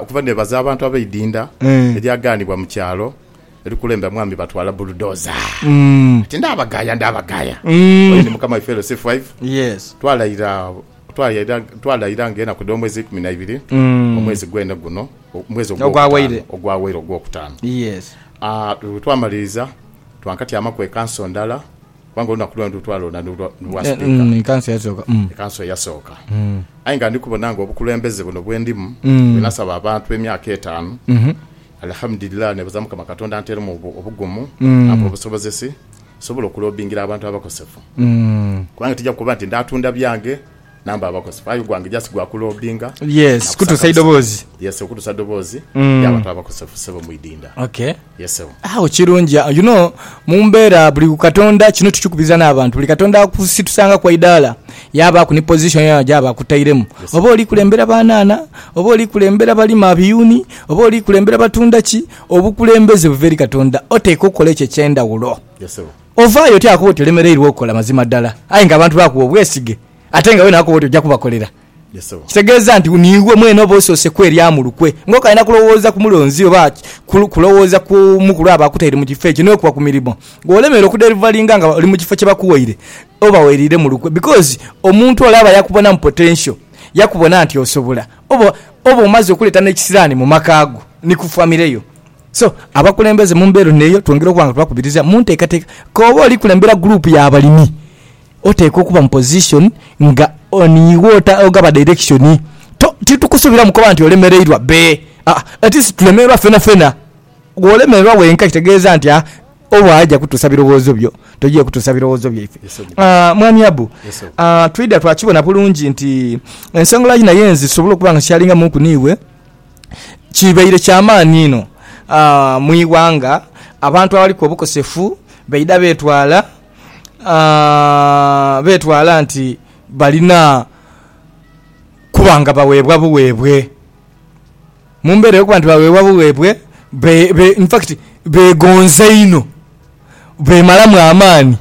Okuva nebaza abantu abeidinda eryaganibwa mu kyalo erikulembera mwami batwala buludoza ati ndabagaya ndabagaya oyo ni mukama waife LC five twalaira twalaira nga enaku dho mwezi eikumi naibiri omwezi gwene guno omwezi ogwawaire ogwokutano bwetwamaliriza twankatyamaku ekanso ndala Kubanga olunaku luno nilwo twalonda ni lwa Sipiika. Ekanso eyasooka. Ekanso eyasooka. Aye nga ndi kubona nga obukulembeze buno bwe ndimu, bwe nasaba abantu emyaka etaanu, Alihamudulillah, neebaza Mukama Katonda anteeremu obugumu, ampe obusobozesi, nsobole okulobingira abantu abakosefu. Kubanga tija kukoba nti ndaatunda byange number abakozi aye ogwange just gwa ku loadinga yes kutusa idoboozi yes okutusa idoboozi mm. yabantu abakosefu sebo mwidinda okay yes sebo awo kirungi you know mumbera buli katonda kino tukikubiza n'abantu buli katonda akusitusanga kwa idala yaba ku ni position ya jaba kutairemu yes, oba oli kulembera banana oba oli kulembera balima biyuni oba oli kulembera batunda ki obukulembeze buveri katonda oteka okola ekyo ekyendawulo yes sebo Ovaayo otya bwakuba oti olemereirwa okukola mazima ddala aye nga abantu bakuwa obwesige ate nga wena wakoba oti ojja kubakolera? Kitegeeza nti niiwe mwene oba osoose kwerya mu lukwe nga okalina kulowooza ku mulonzi oba kulowooza ku mukulu aba akutaire mu kifo ekyo n'okuwa ku mirimo. Bw'olemererwa okuderivalinga nga oli mu kifo kye bakuwaire oba weriire mu lukwe because omuntu ole aba yakubonamu potential, yakubona nti osobola. Oba omaze okuleeta n'ekisiraani mu maka go ni ku famire yo. So, abakulembeze mu mbeera ono eyo twongera okuba nga tubakubiriza mu nteekateeka. K'obe oli kulembera guruupu ya balimi, oteekwa okuba mu pozishoni nga niiwe ota, ogaba dairekishoni. To, titukusuubiramu kuba nti olemereirwa bbe. Aa, at least tulemererwa fenafena. Bw'olemererwa wenka kitegeeza nti a, oba aja kutuusa birowoozo byo, toja kutuusa birowoozo byaife. A, Mwami Abu, a, twidha twakibona bulungi nti ensonga lwaki naye nze sobola okuba nga sikyalingamuuku n'iwe, kibaire kya maani inho mu ighanga abantu abaliku obukosefu baidha betwala nti balina kuba nga baweebwa buweebwe. Mu mbera ey'okuba nti baweebwa buweebwe, infacti begonza inho. beemalamu amaani.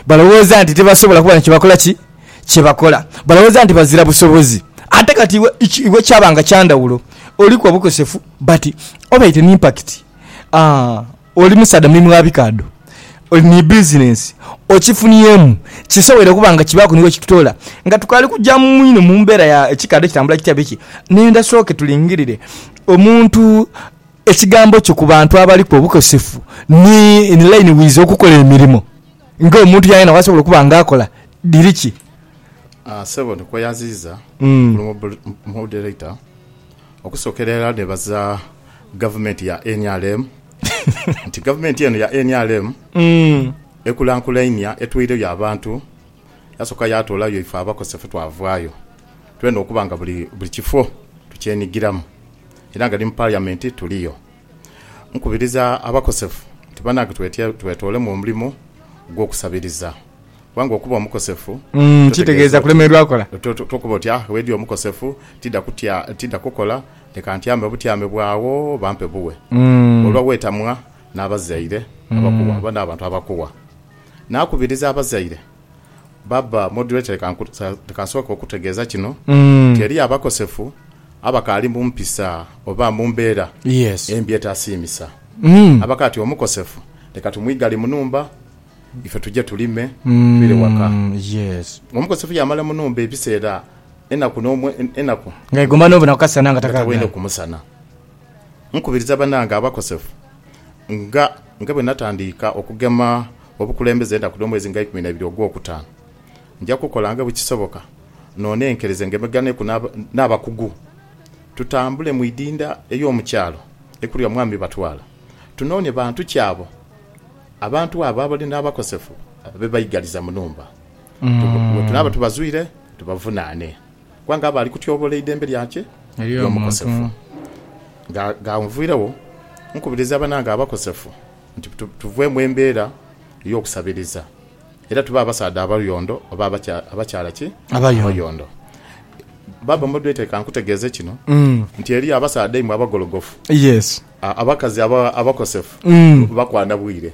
Balowooza nti tibasobola kuba na kye bakola ki? Kye bakola. Balowooza nti bazira busobozi. Ate kati iwe, iwe kyaba nga kya ndhawulo. Oliku obukosefu, but obaite ni impact. Aa, oli musaadha mulimu wa bikaadho. Oli ni bizinensi. Okifuniemu. Kisobwoire okuba nga kibaaku ni we kikutoola. Nga tukaali kuja mu inho mu mbeera ya kikaadho kitambula kitya biki, nenda sooke tulingirire omuntu. Ekigambo kyo ku bantu abaliku obukosefu ni in line with okukola emirimo nga omuntu yena yena bwasobola okuba nga akola. Dhiri ki? Aah sebo ndikweyaziiza Honourable Moderator okusokera irala nebaza government ya nrm nti government eno ya nrm ekulakulainia etweireyo abantu. Yasooka yaatoolayo ife abakosefu twavaayo. Twenda okuba nga buli kifo tukyenigiramu era nga ni mu Paliyamenti tuliyo. Nkubiriza abakosefu nti banange twetoolemu omulimo gw'okusabiriza kubanga okuba omukosefu kitegeeza kulemererwa kola. Tokoba oti, Ah, wedi omukosefu tidha kukola, leka ntyame obutyame bw'agho bampe buwe. Olwa weetamwa n'abazaire abakuwa oba n'abantu abakuwa, Naakubiriza abazaire, Baaba Moderator leka nsooke okukutegeeza kino nti eriyo abakosefu abakaali mu mpisa oba mu mbeera embi etasiimisa. Abakali ati omukosefu leka tumwigale mu nhumba ife tuje tulime twire waka. Omukosefu yaamala mu nhumba ebiseera enaku n'omwezi nga taidha waine kumusana. Nkubiriza banange abakosefu nga nga bwe natandiika okugema obukulembeze enaku dh'omwezi nga eikumi n'eibiri ogw'okutaanu. Nja kukola nga bwe kisoboka noonenkereze ngemeganeku n'abakugu tutambule mu idinda ey'omu kyalo ekulya Mwami Batwala tunoone bantu ki abo abantu abo abali n'abakosefu be baigaliza mu nhumba. Bwe tunaaba tubazwire tubavunaane. Kubanga aba ali kutyobola eidembe lyakye ery'omukosefu. Nga nviiregho, nkubiriza banange abakosefu nti tuve mu embeera ey'okusabiriza era tube abasaadha abayondo oba abakyala ki? Abayondo. Baaba Moderator, ka nkutegeeze kino nti eriyo abasaadha imwe abagologofu, abakazi abakosefu bakwana bwire.